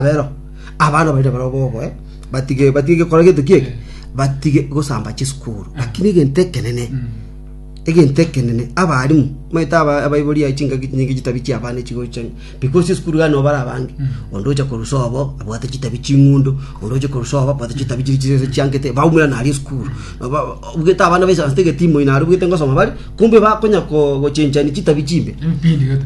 Rero abana baria barabwo bogoe batige batige gikora gento kieke batige gosamba chisukuru lakini egento ekenene egento ekenene abarimu maete aba abaibori ai chingaki nyinge chitabi chia abana chigocha because chisukuru gani obara abange onde ocha korusa obo abwate chitabi ching'undo onde ocha korusa obo abwate chitabi chiri chiri chiangete baumera nari esukuru Ba- obugete abana baisa ase egetimo inare obugete ngosoma bari kumbe bakonya ko- gochenchani chitabi chimbe Mpindi gata.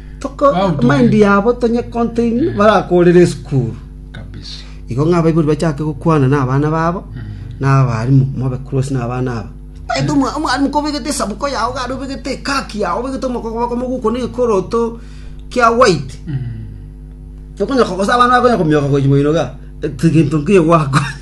Amaindi yabo tonyekontoinie, barakoorere esukuru. Igo ng'a abaibori bachake gokwana nabana babo, na abalimu, mobe close nabana aba. Omanyete omwalimu kobegete esabuko yao igare obegete ekaki yao obegete omokogoboko moguko na egekoroto kia white, tokonye kogosa abana bakonye komioka gochia moino igaa, egento nkeiyo gwakonyire.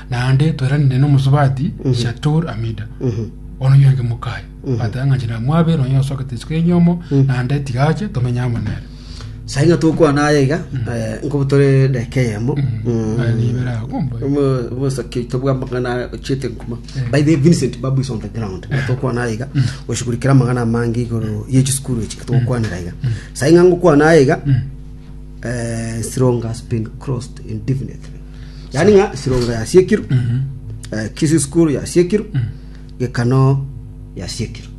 Naende toiranire nomosubati Shatur Amida, bono nywenge mokaye, bateba ng'a inche namwabe, nonye osokete isiko y'enyomo, naende tiga ache, tomenye amo nere. Sai ng'a togokwana aya iga eh, nkobu tore dakika eyemo Aye nibere ago mbae. omosoki oito bwa amang'ana ochiete nkuma by the way, vincent babu is on the ground Ng'a togokwana aya iga oshugurikere amang'ana amange igoro ye chisukuru echi togokwanera iga sai ng'a ngokwana aya iga eh, Sironga has been crossed indefinitely Yaani ng'a Sironga yasiekirwe, eh, Kisii School yasiekirwe, Gekano yasiekirwe.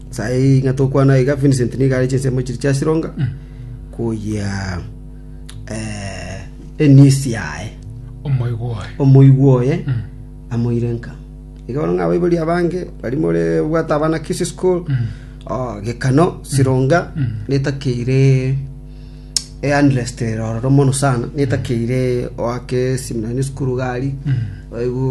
Sayi ng'a tokwana iga Vincent niga are chinsemo chiri chia Sironga koyia eh, enisi yaye omoigo oye omoigwa oye amoire nka iga bono ng'a abaibori abange bari more bwate abana Kisii School oh, Gekano Sironga netakeire eanderestere ororo mono sana, netakeire oake eseminari na esukuru iga aria. Boigo